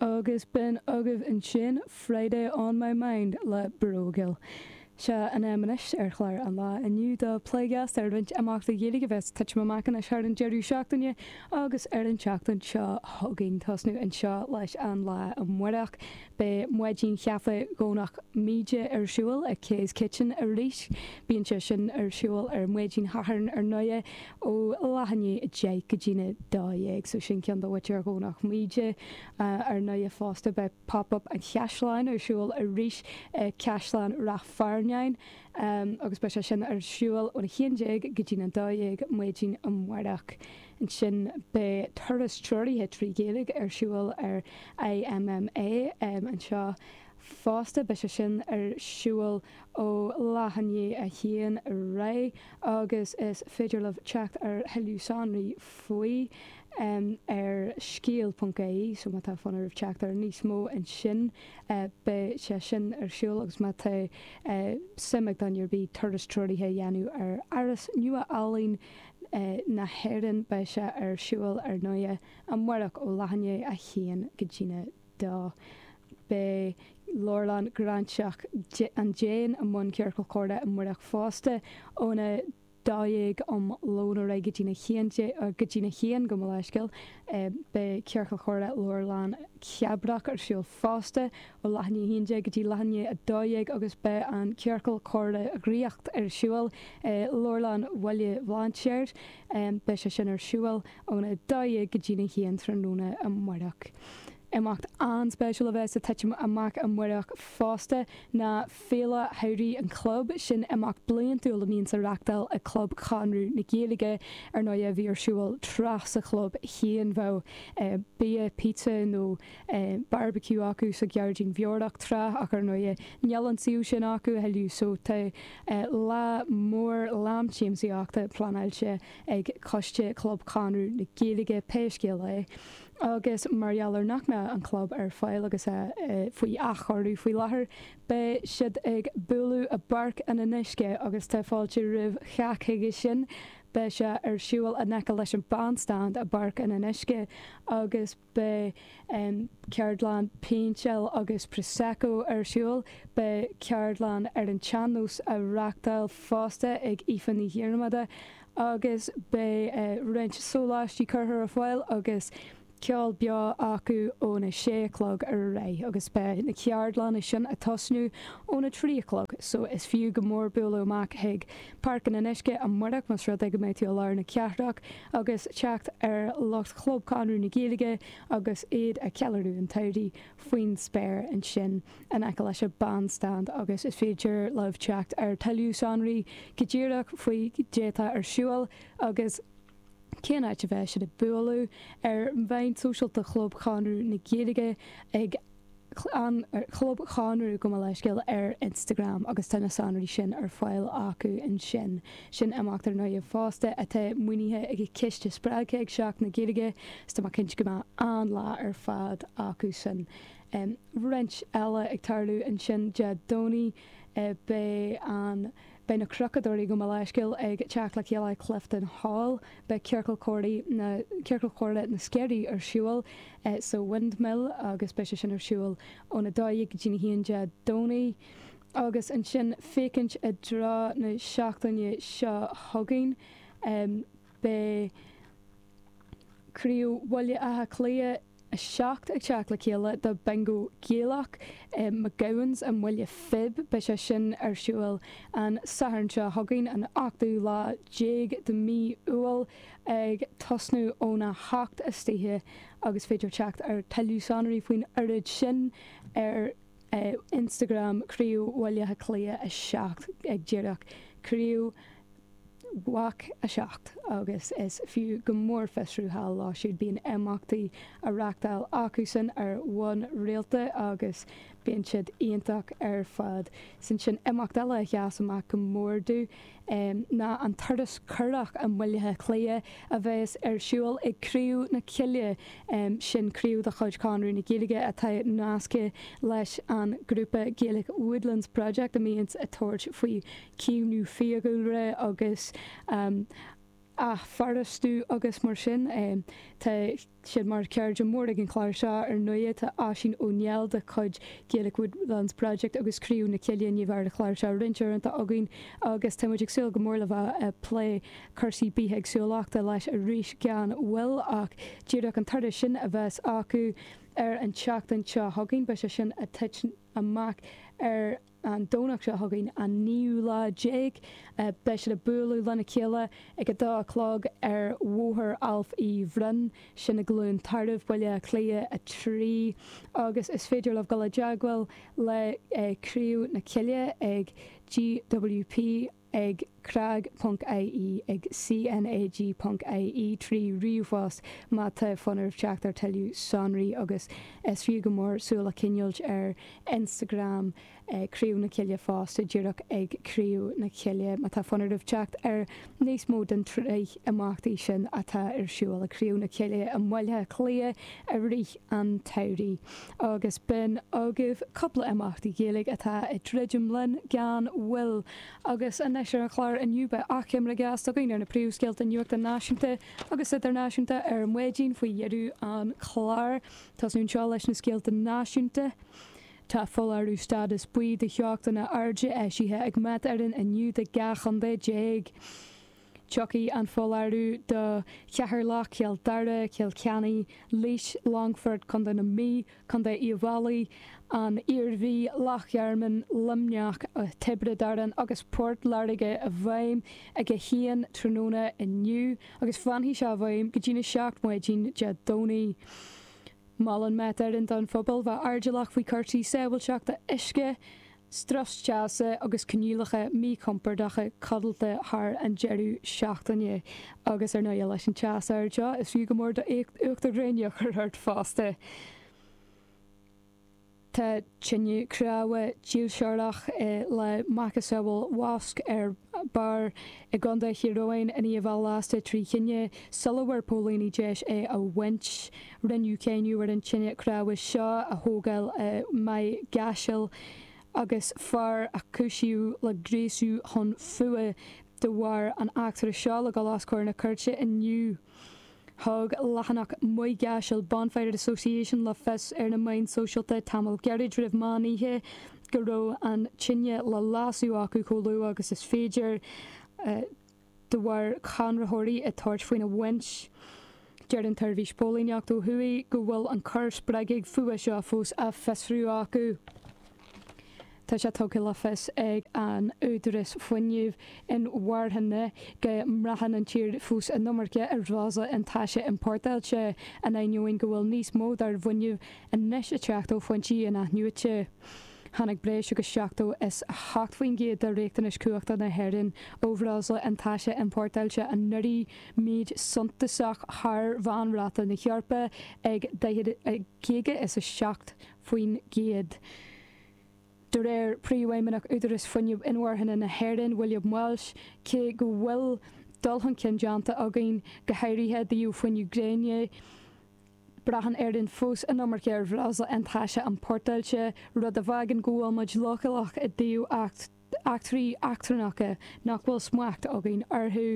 Agus b'in agaibh ansin Friday On My Mind le Brògeal. Seo an t-am anois ar chlár an lae inniu dul i ngleic le roinnt imeachtaí Gaeilge a bheas ag titim amach anois thar an deireadh seachtaine agus ar an tseachtain seo chugainn. Ag tosnú anseo leis an lá amáireach beidh Maidin Chaife Dhomhnach Míde ar siúl i Kay's Kitchen arís. Bíonn sé sin ar siúl ar maidin Sathairn ar ndóigh. ó leath i ndiaidh 10 go dtí an 12 so sin ceann do mhuintir Dhomhnach Míde. Ar ndóighe fosta beidh Pop Up an Chaisleáin ar siúl arís i gCaisleán Ráth Fearnáin agus beidh sé sin ar siúl ón 11 go dtí an 12 maidin amáireach. Ansin beidh turas treoraithe trí Ghaeilge ar siúl ar IMMA anseo fosta beidh sé sin ar siúl Ó leath i ndiaidh 1 ar aghaidh agus is féidir libh teacht ar thuilleadh sonraí faoi ar sceal.ie so má tá fonn oraibh teacht ar níos mó ansin beidh sé sin ar siúl agus má tá suim ag duine ar bith turas treoraithe a dhéanamh ar Áras Nua Ealaíon na hÉireann beidh sé ar siúl ar ndóighe amáireach ó leath i ndiaidh 1 go dtí a dó. Beidh Leabharlann Ghráinseach an Déin i mbun Ciorcal Comhrá amáireach fosta ón 12:00 um nóin ar aghaidh go dtí a haon go dtí a haon gabh mo leithscéal. Beidh Ciorcal Comhrá Leabharlann na Cabraí ar siúl fosta ó leath i ndiaidh 11:00 go dtí leath i ndiaidh 12:00 agus beidh an Ciorcal Comhrá Dhraíocht ar siúl i Leabharlann Bhaile Bhlainséir. Beidh sé sin ar siúl. óna dó dhéag go dtí a haon tráthnóna amáireach. Imeacht an-spéisiúil a bheas ag titim amach amáireach fosta ná Féile Shamhraidh an Chlub. Sin imeacht bliantúil a bíonns á reáchtáil ag Club Chonradh na Gaeilge ar ndóigh a bhí ar siúl tráth sa chlub féin. Bheadh bia, pizza nó barbeque acu sa ghairdín bheorach tráth ach ar ndóigh níl an suíomh sin acu a thuilleadh so tá lá mór lán siamsaíochta pleanáilte ag Coiste Chlub Chonradh na Gaeilge pé scéal é agus mar gheall ar nach bhfuil an club ar fáil agus é faoi athchóiriú faoi láthair, beidh siad ag bualadh i bPáirc an Fhionnuisce agus tá fáilte roimh chách chuige sin. Beidh sé ar siúl in aice leis an Bandstand i bPáirc an Fhionnuisce agus. beidh ceardlann péinteáil agus Prosecco ar siúl. Beidh ceardlann ar an tsean-nós á reáchtáil fosta ag Aoife Ní Dhiarmada agus beidh roinnt sóláistí curtha ar fáil agus ceol beo acu óna sé a chlog ar aghaidh agus beidh na ceardlanna sin ag tosnú óna trí a chlog so is fiú go mór bualadh amach chuig Páirc an Fhionnuisce amáireach más rud é go mbeidh tú i lár na cathrach. agus teacht ar lucht Chlub Chonradh na Gaeilge agus iad ag ceiliúradh an tsamhraidh faoin spéir ansin in aice leis an Bandstand agus is féidir libh teacht ar tuilleadh sonraí go díreach faoi cad atá ar siúl agus cén áit a bheidh siad ag bualadh ar mheáin shóisialta Chlub Chonradh na Gaeilge ag Club Chonradh gabh mo leithscéal ar Instagram agus tá na sonraí sin ar fáil acu ansin. Sin imeacht ar ndóigh fosta atá maoinithe ag an Chiste Spreagtha ag Seachtain na Gaeilge so tá mé cinnte go mbeidh an-lá ar fad acusan. Roinnt eile ag tarlú ansin Dé Domhnaigh beidh an Beidh na creachadóirí gabh mo leithscéal ag teacht le chéile i Clifton Hall. Beidh Ciorcal Comhrá na, Ciorcal Comhrá na Sceirí ar siúl sa Windmill agus beidh sé sin ar siúl ón 12 go dtí'n 1 Dé Domhnaigh agus ansin féachaint i dtreo na seachtaine seo chugainn beidh Craobh Bhaile Átha Cliath 7 ag teacht le chéile do Bingo Gaelach i McGowan's i mBaile Phib. Beidh sé sin ar siúl an Satharn seo chugainn, an t-ochtú lá déag de mí Iúil, ag tosnú óna hocht istoíche agus féidir teacht ar tuilleadh sonraí faoin ócáid sin ar Instagram Craobh Bhaile Átha Cliath 7 ag díreach, craobh. BÁC 7 agus is fiú go mór fiosrú thall leo siúd bíonn imeachtaí á reáchtáil acusan ar bhonn rialta agus bíonn siad iontach ar fad. Ansin imeacht eile a sheas amach go mór domh ná an turas curach i mBaile Átha Cliath a bheas ar siúl ag Craobh na Coille, sin craobh de chuid Chonradh na Gaeilge atá nasctha leis an grúpa Gaelic Woodlands Project a bhíonns ag tabhairt faoi caomhnú fiadhúlra agus athfhoraoisiú agus mar sin. Tá siad mar chairde móra ag an chlár seo. Ar ndóighe tá Oisín Ó Néill de chuid Gaelic Woodlands Project agus Craobh na Coille i ndiaidh a bheith ar an chlár seo roinnt uaireanta againn agus tá muid ag súil go mór le bheith a' plé cúrsaí bithéagsúlachta leis arís gan mhoill ach díreach an turas sin a bheas acu ar an tseachtain seo chugainn beidh sé sin a' titim amach ar An Domhnach seo chugainn, an naoú lá déag, beidh siad ag bualadh lena chéile ag a dó a chlog ar Bhóthar Ailf Uí Bhroin, sin i gCluain Tarbh, Baile Átha Cliath 3, agus is féidir libh dul i dteagmháil le Craobh na Coille ag gwp. ag cnag.ie, ag cnag.ie, trí ríomhphost má tá fonn oraibh teacht ar tuilleadh sonraí agus is fiú go mór súil a coinneáilt ar Instagram Craobh na Cille fosta, díreach ag Craobh na Cille má tá fonn oraibh teacht ar níos mó den tsraith imeachtaí sin atá ar siúl ag Craobh na Cille i mBaile Átha Cliath i rith an tsamhraidh. Agus b'in agaibh cúpla imeacht Ghaeilge atá ag druidim linn gan mhoill. Agus anois ar an chlár inniu beidh achoimre ghearr againn ar na príomhscéalta nuachta náisiúnta agus idirnáisiúnta ar maidin roimh dheireadh an chláir. Tosnú anseo leis na scéalta náisiúnta. Tá foláireamh stádas buí do theochtanna airde eisithe ag Met Éireann inniu do 12 chontae. Tiocfaidh an foláireamh do Cheatharlach, Cill Dara, Cill Chainnigh, Laois, Longfort, Co. na Mí, Co. Uíbh Fhailí, an Iarmhí, Loch Garman, Luimneach, Tiobraid Árann agus Port Láirge i bhfeidhm ag a haon tráthnóna inniu agus fanfaidh sé i bhfeidhm go dtí a seacht maidin Dé Domhnaigh. Molann Met Éireann don phobal bheith airdeallach faoi chúrsaí sábháilteachta uisce, Strus teasa agus coinníollacha míchompordacha codlata thar an deireadh seachtaine. Agus ar ndóigh, leis an teas ard seo, is fiú go mór duit uachtar gréine a chur ort fosta. Tá tine chnámh dílseoirí le macasamhail mhosc ar barr i gContae Thír Eoghain i ndiaidh a bheith lasta trí thine sular bhfuair póilíní deis é a bhaint. Rinneadh cáineadh ar an tine chnámh seo a thógáil i Maigh gCaiseal agus tá fear a cúisíodh le gríosú chun fuath de bharr an eachtra seo le dhul os comhair na cúirte inniu. Thug leathanach Moygashel Bonfire Association le fios ar na meáin sóisialta tamall gairid roimh mheán oíche go raibh an tine le lasadh acu chomh luath agus is féidir. de bharr conraitheoirí ag tabhairt faoina bhaint. Deir an tSeirbhís Póilíneacht ó thuaidh go bhfuil an choir spreagtha ag fuath seo fós á fiosrú acu. Tá sé tugtha le fios ag an Údaras Fuinnimh Inmharthana go mbraitheann an tír fós an iomarca ar bhreosla iontaise iompórtáilte, in ainneoin go bhfuil níos mó dár bhfuinneamh anois ag teacht ó foinsí in-athnuaite. Tháinig breis agus 77% de riachtanais cumhachta na hÉireann ó bhreosla iontaise iompórtáilte anuraidh, méid suntasach thar mheánráta na hEorpa ag 47% De réir Príomhfheidhmeannach Údarás Fuinnimh Inmharthana na hÉireann, William Walsh, cé go bhfuil dul chun cinn déanta againn, go háirithe i dtaobh fuinnimh gréine, Braitheann Éire fós an iomarca ar bhreosla iontaise iompórtáilte, rud a fhágann go bhfuil muid leochaileach i dtaobh eachtraí eachtrannacha nach bhfuil smacht againn orthu.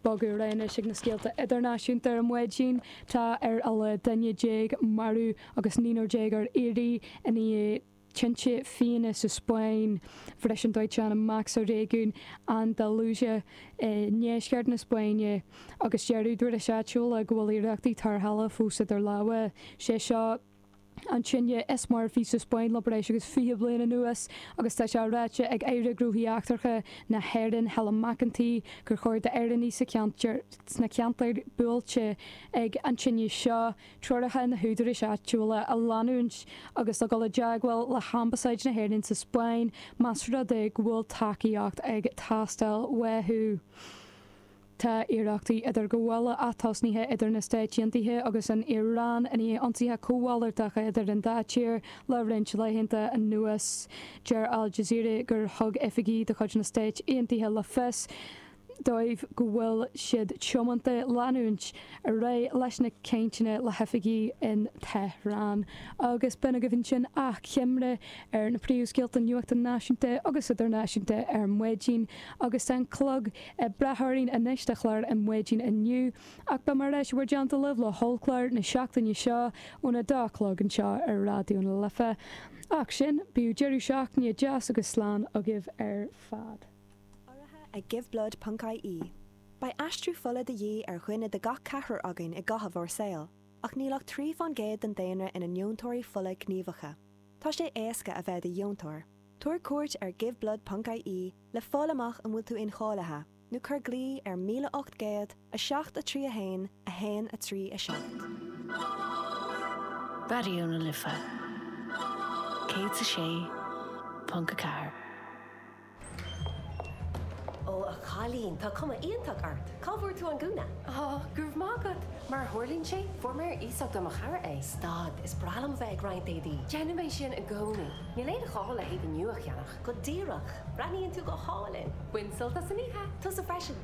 Bogadh ar aghaidh anois ag na scéalta idirnáisiúnta ar maidin. Tá ar a laghad duine déag marbh agus naonúr déag ar iarraidh i ndiaidh. tinte fiáine sa Spáinn, bhris an dóiteán amach sa réigiún Andalusia i ndeisceart na Spáinne agus deir údaráis áitiúla go bhfuil iarrachtaí tarrthála fós idir lámha. Is é seo an tine is mó ar bith sa Spáinn le breis agus 20 bliain anuas agus tá sé ráite ag Aire Gnóthaí Eachtracha na hÉireann Helen McEntee gur chóir d'Éireannaigh sna ceantair buailte ag an tine seo treoracha na n-údarás áitiúla a leanúint agus a dhul i dteagmháil le hAmbasáid na hÉireann sa Spáinn más rud é go bhfuil tacaíocht ag teastáil uathu. Tá iarrachtaí idirghabhála atosnaithe idir na Stáit Aontaithe agus an Iaráin i ndiaidh ionsaithe cómhalartacha idir an dá tír le roinnt laethanta anuas. Deir Al Jazeera gur thug oifigigh de chuid na Stáit Aontaithe le fios, dóibh go bhfuil siad tiomanta leanúint ar aghaidh leis na cainteanna le hoifigigh in Tehran. Agus b'in agaibh ansin achoimre ar na príomhscéalta nuachta náisiúnta agus idirnáisiúnta ar maidin agus tá an clog ag breith orainn anois do chlár na maidine inniu ach beidh mé ar ais in bhur dteannta libh le hollchlár na seachtaine seo ón 2 a chlog anseo ar Raidió na Life. Ach sin, bíodh deireadh seachtaine deas agus slán agaibh ar fad. Urraithe ag Giveblood.ie, Beidh aistriú fola de dhíth ar dhuine de gach ceathrar againn i gcaitheamh ár saoil, ach níl ach trí faoin gcéad den daonra ina ndeontóirí fola gníomhacha. Tá sé éasca a bheith i do dheontóir. Tabhair cuairt ar Giveblood.ie le fáil amach an bhfuil tú incháilithe, nó cuir glao ar 1800. 7 3 1 1 3 7. Raidió na Life 106.4. Ó a chailín, tá cuma iontach ort! Cá bhfuair tú an gúna? Ó, go raibh maith agat! Mar a tharlaíonn sé, fuair mé ar iasacht é ó mo chara. Stad, is breá liom a bheith ag roinnt éadaí! Déanaim é sin i gcónaí. Níl aon ghá le héadaí nua a cheannach. Go díreach! Breathnaíonn tú go hálainn! Bain sult as an oíche! Tusa freisin!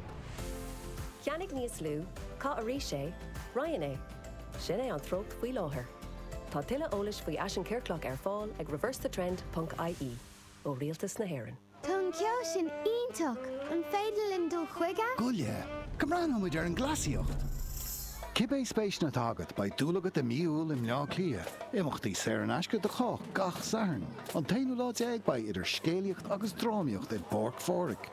Ceannaigh níos lú, caith arís é, roinn é. Sin é an treocht faoi láthair. Tá tuilleadh eolais faoi fhaisean ciorclach ar fáil ag reversethetrend.ie ó rialtas na hÉireann. Tá an ceo sin iontach! An féidir linn dul chuige? Gabh i leith, go mbreathnóidh muid ar an gcleasaíocht! Cibé spéiseanna atá agat, beidh dúil agat i mí Iúil i mBleá Cliath. Imeachtaí saor in aisce do chách gach Satharn. An t-aonú lá déag beidh idir scéalaíocht agus drámaíocht i bPáirc Phádraig.